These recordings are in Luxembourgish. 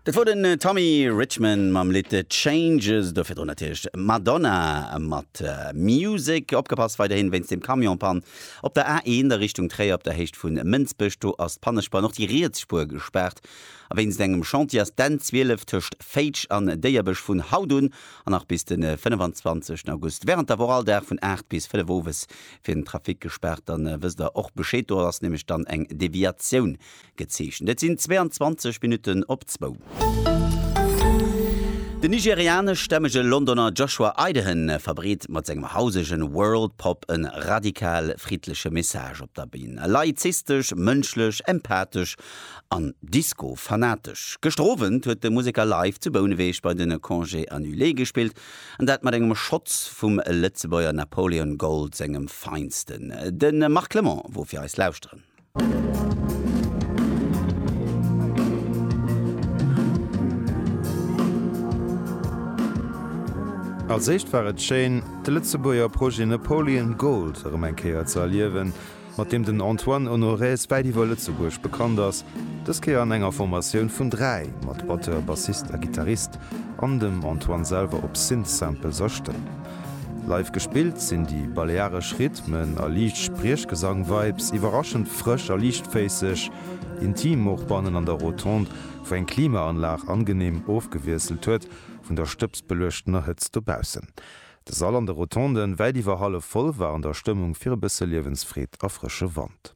Dat wor den Tommy Richman mam Lidd Changes, do virdrun natierlech Madonna mat Music. Opgepasst weiderhin wéinst dem Camion-Pann op der A1 a Richtung Tréier op der Héicht vu Mënsbech, do ass d'Pannespuer, och déi riets Spuer gespaart a wéinst engem Chantier ass d'N 12 tëscht Féitsch an Déierbech vun haut un an nach bis de 25 August während der Woch all Dag vun 8 bis 5 owes fir den Trafic gespaart. Dann wësst der och Bescheed, do ass nämlech dann eng Deviatioun gezeechent. Et sinn 22 Minutten op zwou. De nigerianeschstämmege Londoner Joshua Idehan verbreet mat sengem hausege Worldpop e radikal friddleche Message op der Bün. Laizistesch, mënschlech, empathesch an Disco-fanatesch. Gëschter Owend huet de Museker live zu Bouneweg bei de Congés Annulés gespillt, an dat mat engem Schotz vum Lëtzebuerger Napoleon Gold sengem feinsten. De Marc Clement wor fir eis lauschteren. Als éischt war et schéin, de Lëtzebuerger Projet Napoleon Gold erëm eng Kéier ze erliewen, mat deem den Antoine Honorez wäit iwwer Lëtzebuerg bekannt ass, dës Kéier an enger Formatioun vun dräi, mat Batteur, Bassist a Gittarist, an dem Antoine selwer op Synth-Samples a Stëmm. Live gespillt sinn déi balearesch Rhythmen a liicht Spriechgesang-Vibes iwwerraschend frësch a liichtféisseg, intim och bannen an der Rotonde, wou eng Klimaanlag angeneem ofgewiesselt huet vun der stëbsbeluechtener Hëtzt dobaussen. De Sall an de Rotonden, wäit iwwer hallef voll, war an der Stëmmung fir e bësse Liewensfreed a frësche Wand.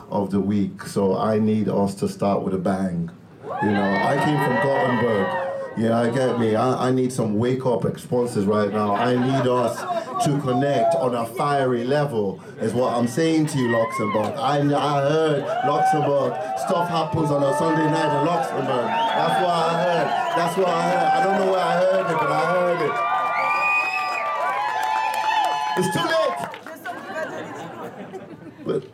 of the week so I need us to start with a bang you know I came from Gothenburg yeah I get me I need some wake up exponses right now I need us to connect on a fiery level is what I'm saying to you Luxembourg I heard Luxembourg stuff happens on a Sunday night in Luxembourg that's what I heard that's what I heard I don't know where I heard it but I heard it it's too late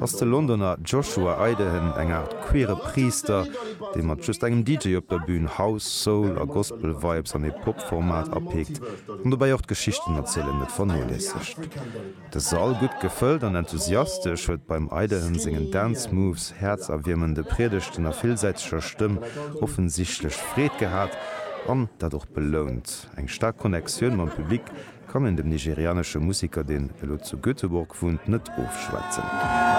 ass de Londoner Joshua Idehen eng Aart queere Priister, dee mat just engem DJ op der Bün House, Soul a Gospel Vibes an ee Pop-Format apeekt an dobäi och d'Geschichten erzielen net vernoléissegt. De Sall, gutt gefëllt an enthusiastesch, huet beim Idehen sengen Dance Moves, häerzerwiermende Priedegten a villsäiteger Stëmm offensichtlech Freed gehat an dat och belount. Eng staark Connectioun mam Public kann een dem nigerianesche Museker, deen elo zu Göteborg wunnt, net ofschwätzen.